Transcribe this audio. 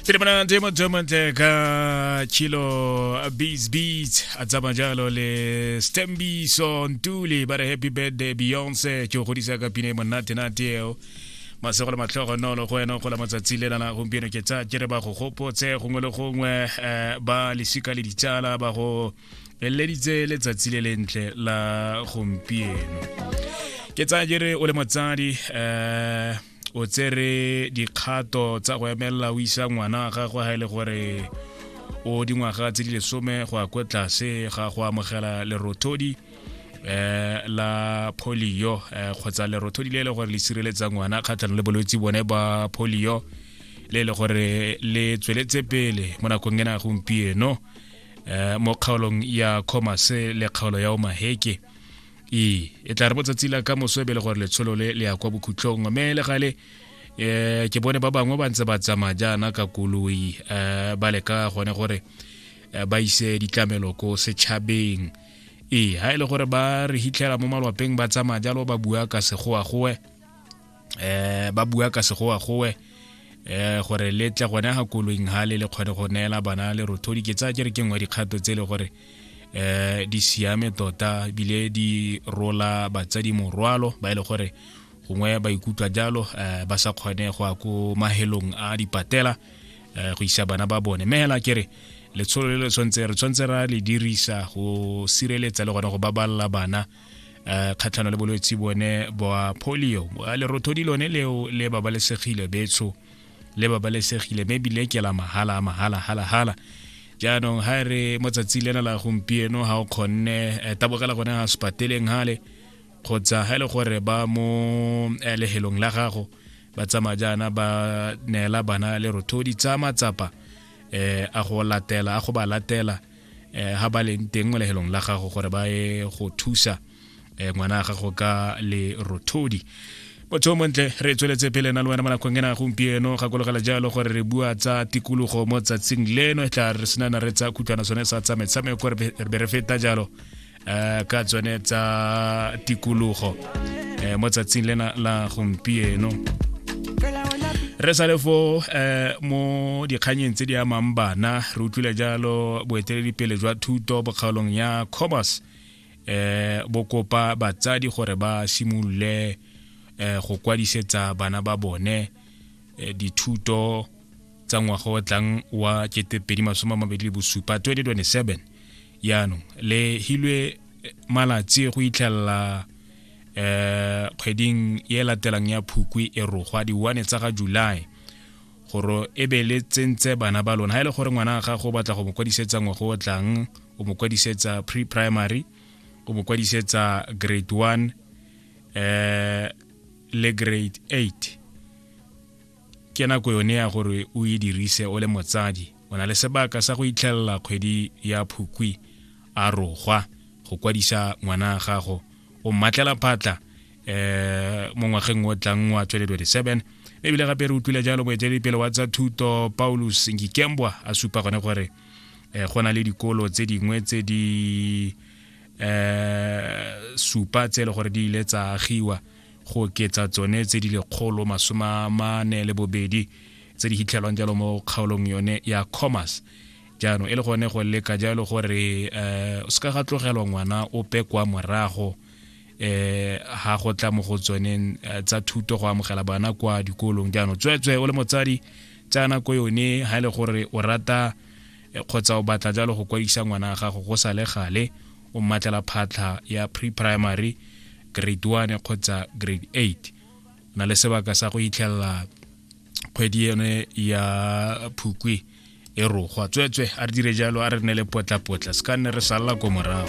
Pele mona demo demo ka chilo beats beats a tsama jalo le Stembiso Ntuli ba re happy birthday Beyonce ke o godisa ka pine monate nate eo masego le matlhogo nolo go wena go la matsatsi le lana gompieno ke tsa ke re ba go gopotse gongwe le gongwe eh, ba lesika le ditsala ba go eleditse letsatsi le lentle la gompieno ke tsaya ke re o le motsadi um o tsere dikgato tsa go emelela o isa ngwana wa gagwe ga e le gore o dingwaga tse di lesome go ya kwa tlase ga go amogela lerothodi eh la polio eh, kgotsa lerothodi le e le gore le sireletsa ngwana kgatlhanong le bolwetse bone ba polio le e le gore le tsweletse pele mo nakong ena ya gompieno eh, mo kgaolong ya comase le kgaolo ya omaheke e e tla re mo tsatsi la ka moso ebele gore letsholo le le ya kwa bokhutlhong mme le gale um ke bone ba bangwe ba ntse ba tsamaya jaana ka koloi um ba leka gone gore eh, ba ise ditlamelo ko setšhabeng ee ga e le gore ba re hitlhela mo malwapeng ba tsamaya jalo ba bua ka segoagoe eh ba bua ka segoa gowe eh gore le tle gone ga koloing ha le le kgone go neela bana le rothodi ke tsaya ke re ke nngwe dikgato tse le gore eh di siame tota bile di rola batsadi morwalo ba ile e gore gongwe ba ikutlwa jalo eh, ba sa kgone go ya ko mahelong a dipatela eh, go isa bana ba bone mme hela ke re letsholo le le tshwanetse re tshwanetse ra le dirisa go sireletsa le gone go babalela bana um kgatlhano le bolwetse bone boa polio boa lerothodi lone leo le babalesegile betsho le babalesegile mme ebile ke la mahala a mahala halahala jaanong ha e re mo tsatsi lena la gompieno ga o kgonne eh, tabogela gone ga sepateleng gale kgotsa ga e le gore ba mo eh, lehelong la gago ba tsamaya jaana ba neela bana le rothodi tsa matsapa um a go latela a go ba latela eh ha ba leng teng mo lehelong la gago gore ba ye go thusa eh, ngwana wa gago ka le rothodi motho o montle re tsweletse pele na le wena mo nakong ena gompieno gakologela jalo gore re bua tsa tikologo mo tsatsing leno e tla re senana re tsa khutlwana sone sa tsametshameko re be re feta jalo um ka tsone tsa tikologo um mo tsatsing lena la gompieno re sa le fo eh, mo dikganyeng tse di amang bana re utlwile jalo boeteledipele jwa thuto bokgaolong ya cobas eh, bo kopa batsadi gore ba simolole eh, go kwadisetsa bana ba bone eh, dithuto tsa ngwaga o tlang wa 2027 yaanong le hilwe eh, malatsi go itlhelela eh kgweding e latelang ya phukwi e rogwa di-one tsa ga july gore e be le tsentse bana ba lona ga e le gore ngwana ga gago o batla go mo kwadisetsa ngwago o tlang o mo kwadisetsa pre-primary o mo kwadisetsa grade one eh le grade eight Ke nako yone ya gore o e dirise o le motsadi. O na le sebaka sa go itlhelela kgwedi ya Phukwi a rogwa go kwadisa ngwana a gago o mmatlela phatla eh mo ngwageng o tlang wa 2027 ebile gape re utlwile jalo moeteledipele wa tsa thuto paulus ngikembwa a supa gone gore eh, go na le dikolo tse dingwe tse di eh, supa tse e le gore di ile tsa agiwa go oketsa tsone tse di lekgolo masome a mane le bobedi tse di hitlhelwang jalo mo kgaolong yone ya commerce jaanong e le gone go leka jalo gore um o se ka ga tlogelwa ngwana o pe kwa morago eh ha go tla mo go tsoneng eh, tsa thuto go amogela bana kwa dikolong jaanong tsweetswe o le motsadi tsa nako yone ha e le gore o rata e kgotsa o batla jalo go kwadisa ngwana wa gago go sa le gale o mmatlela phatlha ya pre-primary grade 1 kgotsa grade 8 na le sebaka sa go itlhelela kgwedi ene ya phukwi e rogwa tsweetswe a re dire jalo a re nne le potlapotla se ka nne re salela ko morago